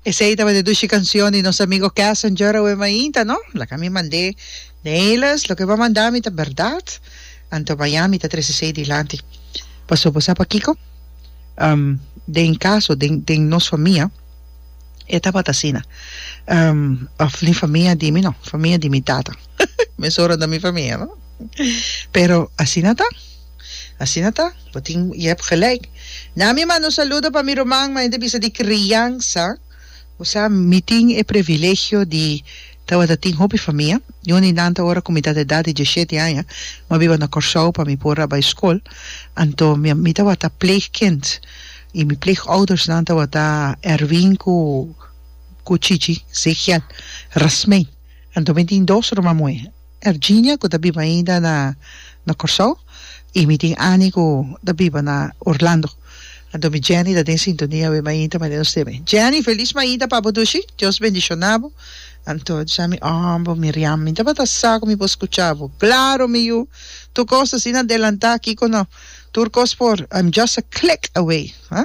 Esey tabata dushi cancion di nos amigo Cassinger awe mainta, no? Laga mi mandé Nelis, loke bo mandá mi ta berdad, anto maya mi ta trece esey dilanti. Paso bo sa pakico? Um, den caso den, den nos famia e tabata asina. Um, of ni famia di mi, no, famia di mi tata. Mesora ta mi famia, no? Pero asina ta. Asina ta, bo tin i hèb gelijk. Na mi manda un saludo pa mi ruman manera di bisa di kriansa. Bo sa, mi tin e privilegio di tabata tin hopi famia. Yu di nan ta ora ku mi ta ta edat di dieshete aña. Mi a biba na Kòrsou pa mi por a bai skol. Anto mi tabata pleegkind i mi pleegoudersnan tabata Erwin ku ku Chichi Zegiel Rasmijn. Anto mi tin dos ruman muhé. Erginia cu ta biba ainda na na Corsou y mi tin Annie cu ta biba na Orlando. Anto mi Jenny ta den sintonia awe mainta mane nos te bay. Jenny feliz mainta pa bo dushi Dios bendiciona bo anto disa mi oom bo Miriam mi tabata sa cu mi por scucha bo claro mi yu tur cos ta asina adelanta aki cu no tur cos por I'm just a click away ha.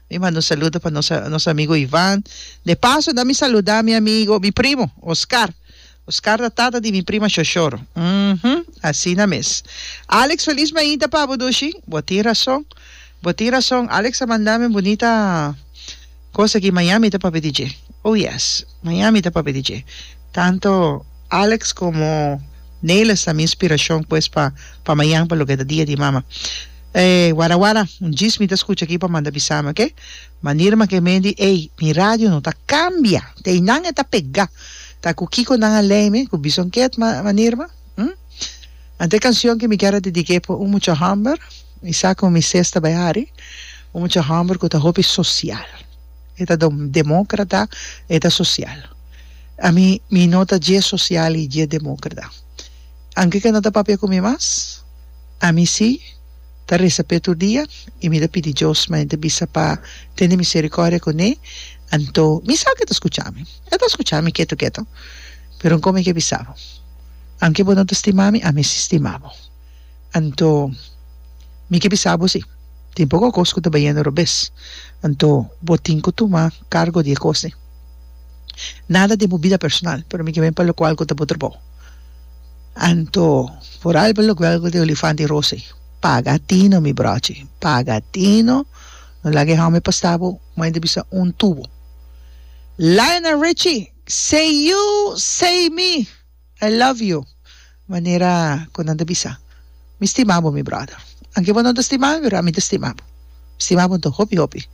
Mi manda un saludo pa nos nos amigo Ivan. De paso na mi saluda mi amigo, mi primo Oscar. Oscar ta tata di mi prima Shoshoro. Mhm, asina mes. Alex felis mainta pa bo dushi. Bo tin rason. Bo tin rason. Alex a manda mi un bunita cos aki. Miami ta papia di dje. Oh yes, Miami ta papia di dje. Tanto Alex como Nelis ta mi inspiracion pues pa pa mayan pa loke ta dia di mama. Ey wara wara un djis mi ta scucha aki pa manda bisami ok manera ma ke men di ey mi radio no ta cambia te eynan e ta pega ta cu kico nan a ley mi cu bison ket ma manera ma hm ante e cancion ke mi kier a dedique pa un mucha homber y sa cu mi sesta bay hari un mucha homber cu ta hopi social e ta dom democrata e ta social ami mi no ta dje social y dje democrata anke ke no ta papia cu mi mas Ami si, ta resa p'e tur dia, i mi ta pidi Dios ma e ta bisa pa tende miserikòrdia kuné, anto mi sa ku e ta skucha mi. E ta skucha mi ketu ketu. Pero N komo e ke bisa bo, Aunke bo no ta stima mi, ami si stima bo. Anto mi ke bisa bo si, tin poko kos ku ta bayendo robes, anto bo tin ku tuma kargo di e kosnan. Nada den bo bida personal, pero mi ke ben pa lokual ku ta bo trabou. Anto, por alba lo guelgo di olifant di Rosy, paga tino mi brochi, paga tino, no laga e homber pasta bo, moe ta bisa un tubo. Lionel Richie, say you, say me, I love you, manera cu nan ta bisa, mi stima bo mi brother, anke bo no ta stima mi pero ami ta stima bo, mi stima bo anto hopi hopi.